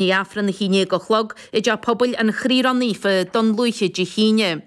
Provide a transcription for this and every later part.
ndiaidh Aifreann a haon déag a chlog i dteach pobail an Chroí Ró-Naofa Dún Lúiche Dé hAoine.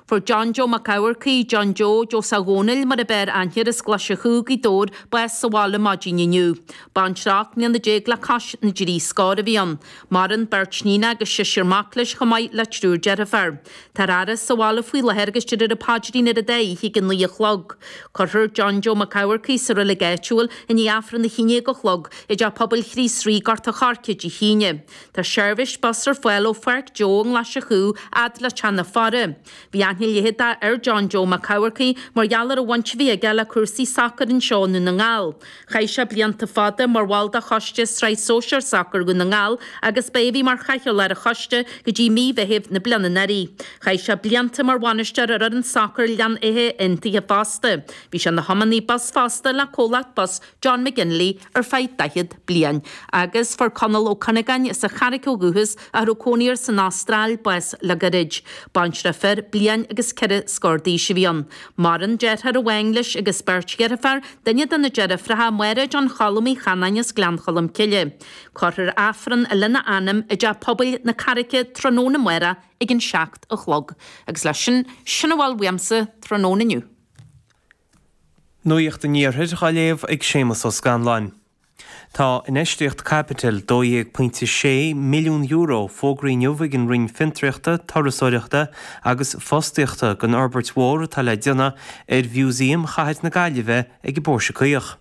Fuair John Joe Mac Eamharcaigh, John Joe, Joe Saw Dhónaill mar ab fhearr aithne as Glaise Chú Gaoith Dobhair bás sa bhaile maidin inniu. Baintreach fir ocht mbliana déag le cois na dtrí scór a bhí ann. Maireann beirt níon agus seisear mac leis chomh maith le triúr deirfear. Tá an fhaire sa bhaile faoi láthair agus déarfar an paidrín ar an dá oíche ag a naoi a chlog. Cuirfear John Joe Mac Eamharcaigh sa reilig áitiúil i ndiaidh Aifreann a haon déag a chlog i dTeach Pobail Chríost Rí, Gort a' Choirce Dé hAoine. Tá seirbhís bus ar fáil ó Pháirc Joe i nGlaise Chú fhad le teach na faire. Bhí aithne leitheadach ar John Joe Mac Eamharcaigh mar gheall ar an bhaint a bhí aige le cúrsaí sacair anseo i nDún na nGall. Chaith sé blianta fada mar bhall de choiste Sraith Sóisear Sacair Dhún na nGall agus ba é a bhí mar chathaoirleach ar an choiste go dtí mí Mheithimh na bliana anuraidh. Chaith sé blianta mar bhainisteoir ar fhoireann sacair Ghleann Átha Aontaithe fosta. Bhí sé ina thiománaí bus fosta le comhlacht bus John McGinley ar feadh 40 bliain. Agus fuair Conall Ó Cuinneagáin as an Charraic ó dhúchas, ach a raibh cónaí air san Astráil, bás le gairid. Baintreach fir bliain agus ceithre scór d'aois a bhí ann. Maireann deartháir amháin leis agus beirt dheirfear, Duine de na deirfiúracha, Mairéad Bean Choilm Uí Chanainn as Gleann Cholm Cille. Cuirfear Aifreann lena anam i dTeach Pobail na Carraice tráthnóna amárach ag an seacht a chlog. Agus leis sin, sin a bhfuil uaimse tráthnóna inniu. Nuacht an Iarthair dhá léamh ag Séamus Ó Scanláin. Tá infheistíocht caipitil €12.6 milliún fógraithe inniu ag an Roinn Fiontraíochta, Turasóireachta agus Fostaíochta don fhorbairt mhór atá le déanamh ar Mhúsaem Chathair na Gaillimhe ag an bPóirse Caoch.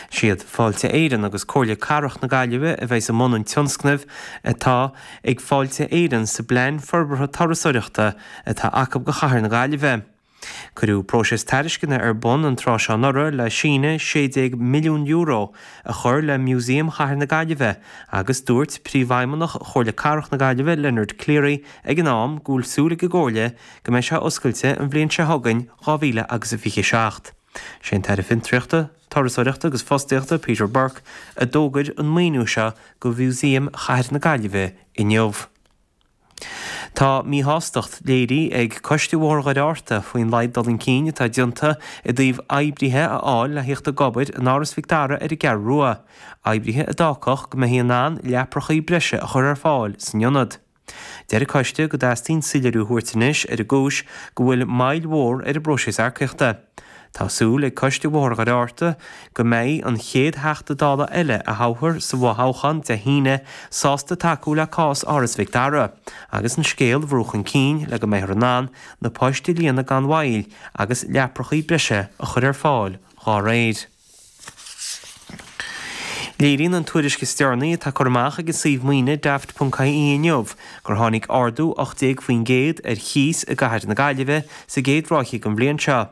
Is iad Fáilte Éireann agus Comhairle Cathrach na Gaillimhe a bheas i mbun an tionscnaimh atá ag Fáilte Éireann sa bPlean Forbartha Turasóireachta atá acu do Chathair na Gaillimhe. Cuireadh próiseas tairisceana ar bun an tráth seo anuraidh le síneadh €16 milliún a chur le Músaem Chathair na Gaillimhe agus dúirt Príomhfheidhmeannach Chomhairle Cathrach na Gaillimhe Leonard Cleary ag an am go bhfuil súil ag an gComhairle go mbeidh sé oscailte an bhliain seo chugainn, 2027. Sé an tAire Fiontraíochta, Turasóireachta agus Fostaíochta Peter Burke a d'fhógair an maoiniú seo go Mhúsaem Chathair na Gaillimhe inniu. Tá míshástacht léirithe ag Coiste Bhóthar Dhoire Fhearta faoin laghad dul chun cinn atá déanta i dtaobh oibrithe a fháil le theacht ag obair in Áras Mhic Dara ar an gCeathrú Rua, oibrithe a d'fhágfadh go mbeifí in ann leaprachaí breise a chur ar fáil san ionad. Deir an Coiste go dteastaíonn soiléiriú a thabhairt anois ar an gcúis go bhfuil moill mhór ar an bpróiseas earcaíochta. Tá súil ag Coiste Bhóthar Dhoire Fhearta go mbeidh an chéad Theachta Dála eile a thoghfar sa bhfothoghchán Dé hAoine sásta tacú le cás Áras Mhic Dara agus an scéal a bhrú chun cinn le go mbeifear in ann na poist a líonadh gan mhoill agus leaprachaí breise a chur ar fáil dhá réir. Léiríonn an tuairisc is deireanaí atá curtha amach ag an suíomh maoine Daft.ie inniu gur tháinig ardú 18% ar chíos i gCathair na Gaillimhe sa gcéad ráithe den bhliain seo.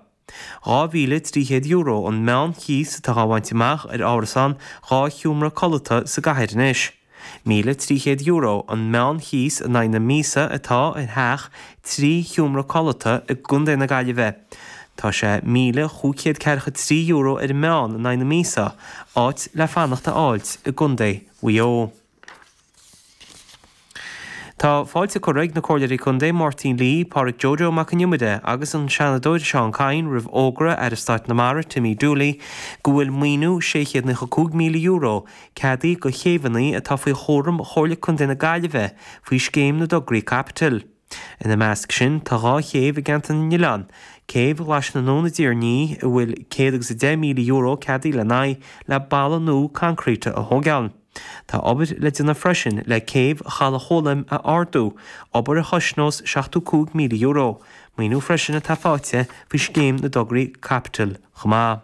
€2,300 an meán chíos atá á bhaint amach ar árasán dhá sheomra codlata sa gcathair anois. €1,300 an meán chíos in aghaidh na míosa atá i dteach trí sheomra codlata i gContae na Gaillimhe. Tá sé míle chúig chéad ceathracha a trí euro ar an meán in aghaidh na míosa áit le fanacht a fháilt i gContae Mhaigh Eo. Tá fáilte curtha ag na Comhairleoirí Contae Máirín Lee, Pádraic Jojo Mac an Iomaire agus an Seanadóir Seán Kyne roimh fhógra Aire Stáit na Mara Timmy Dooley go bhfuil maoiniú €695,000 ceadaithe do chéibheanna atá faoi chúram Chomhairle Contae na Gaillimhe faoi Scéim na dTograí Caipitil. Ina measc sin tá dhá chéibh i gceantar na nOileán, céibh Ghlais na nUan i dTír an Fhia, a bhfuil €110,000 ceadaithe lena aghaidh le balla nua concreíte a thóigeáil. Tá obair le déanamh freisin le céibh Chaladh Ghólaim a ardú, obair a chosnós €75,000. Maoiniú freisin atá faighte faoi Scéim na dTograí Caipitil chomh maith.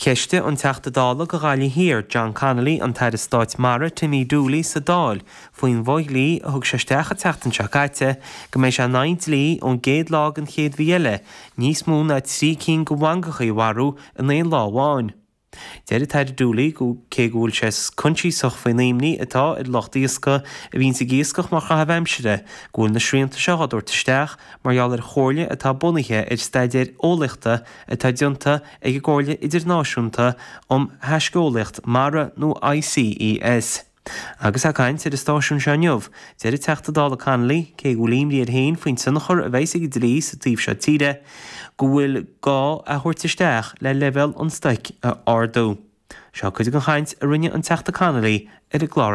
Cheistigh an Teachta Dála do Ghaillimh Thiar, John Connolly, an tAire Stáit Mara, Timmy Dooley, sa Dáil faoin bhfodhlí a thug sé isteach an tseachtain seo caite go mbeidh sé in aghaidh an dlí ón gcéad lá den chéad mhí eile níos mó ná trí cinn de mhangachaí a mharú in aon lá amháin. Deir an tAire Dooley cé go bhfuil sé coinsiasach faoin imní atá ar lucht iascaigh a bhíonns ag iascach mar chaitheamh aimsire go bhfuil na srianta seo á dtabhairt isteach mar gheall ar chomhairle atá bunaithe ar staidéar eolaíochta atá déanta ag an gComhairle Idirnáisiúnta um Thaisceolaíocht Mara nó ICES. Agus é ag caint ar an stáisiún seo inniu, deir an Teachta Dála Connolly cé go bhfuil imní air féin faoin tionchar a bheas ag an dlí sa taobh seo tíre go bhfuil sé dhá thabhairt isteach le leibhéal an stoic a ardú. Seo cuid den chaint a rinne an Teachta Connolly ar an gclár